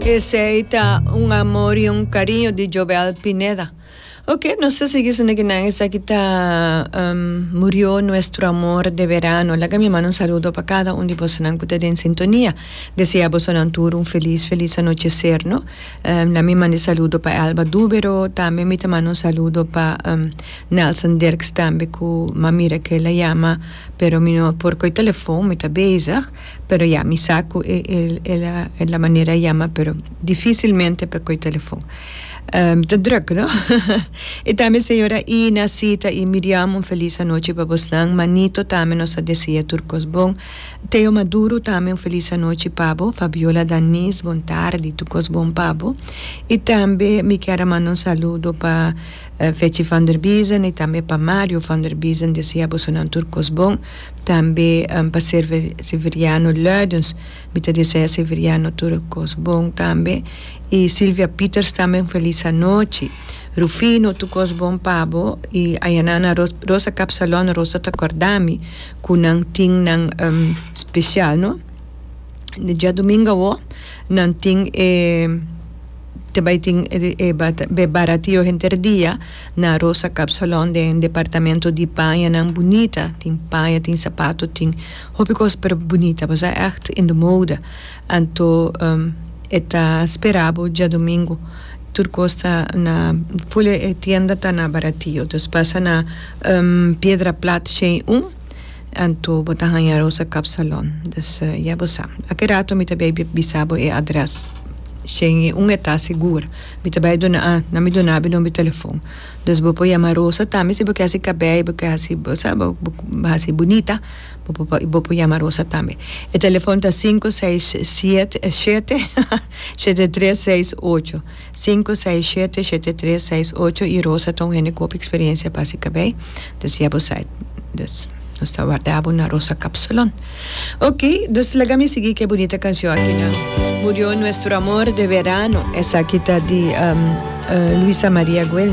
Esey ta un amor y un cariño di Jovel Pineda. Ok, nos a sigui sende kinan esaki ta um, murió nuestro amor de verano. Laga mi manda un saludo pa cada un di bosonan cu ta den sintonia. Desea bosonan tur un feliz, feliz anochecer, no? Um, na mi manda e saludo pa Elba Dubero, tambe mi ta manda un saludo pa, um, Nelson Dirks tambe cu, ma mira cu el a yama pero mi no por coy telefon, mi ta bezig. Pero ya, mi sa cu e el a manera a yama, pero dificilmente pa coy telefon. Ta druk, no? Y tambe señora Ina, Sita y Miriam, un feliz anochi pa bosnan. Manito tambe nos a desea tur cos bon. Theo Maduro tambe un feliz anochi pa bo. Fabiola Danis, bon tardi, tur cos bon pa bo. Y tambe mi kier a manda un saludo pa. Fetchy van der Biesen y tambe pa Mario van der Biesen desea bosonan tur cos bon, tambe pa Server Severiano Luidens mi ta desea Severiano tur cos bon tambe y Silvia Pieters tambe un feliz anochi, Rufino tur cos bon pa bo y Ayanana Rosa Capsalon Rosa ta cordami cu nan tin nan special no, diadomingo awo nan tin e. te bai tin e be baratio henter dia na Rosa Kapsalon den departamento di pañanan bunita tin paña tin sapato tin hopi kos pero bunita bo sa ègt in de mode anto e ta spera bo djadumingu tur kos ta na ful e tienda ta na baratio dus pasa na Piedra Plat Shei un. anto bo ta haña Rosa Kapsalon. Dus ya bo sa. Aki rato mi ta bai bisa bo e adrès. Shen i un e ta sigur. Mi ta bai duna a nan mi duna bo e nomber telefon. Dus bo por yama Rosa tambe si bo ke hasi kabei i bo ke hasi bo sa bo hasi bunita bo por bo por yama Rosa tambe. E telefon ta sinku seis siete shete shete tres seis ocho. Sinku, seis, shete, shete, tres, seis, ocho i Rosa ta un hende ku hopi eksperiencia pa hasi kabei. Dus ya bo sai. Dus, nos ta warda bo na Rosa Kapsalon. Oke, dus laga mi sigui ku e bunita kanshon akina. Murió nuestro amor de verano. Esaki ta di Luisa Maria Guel.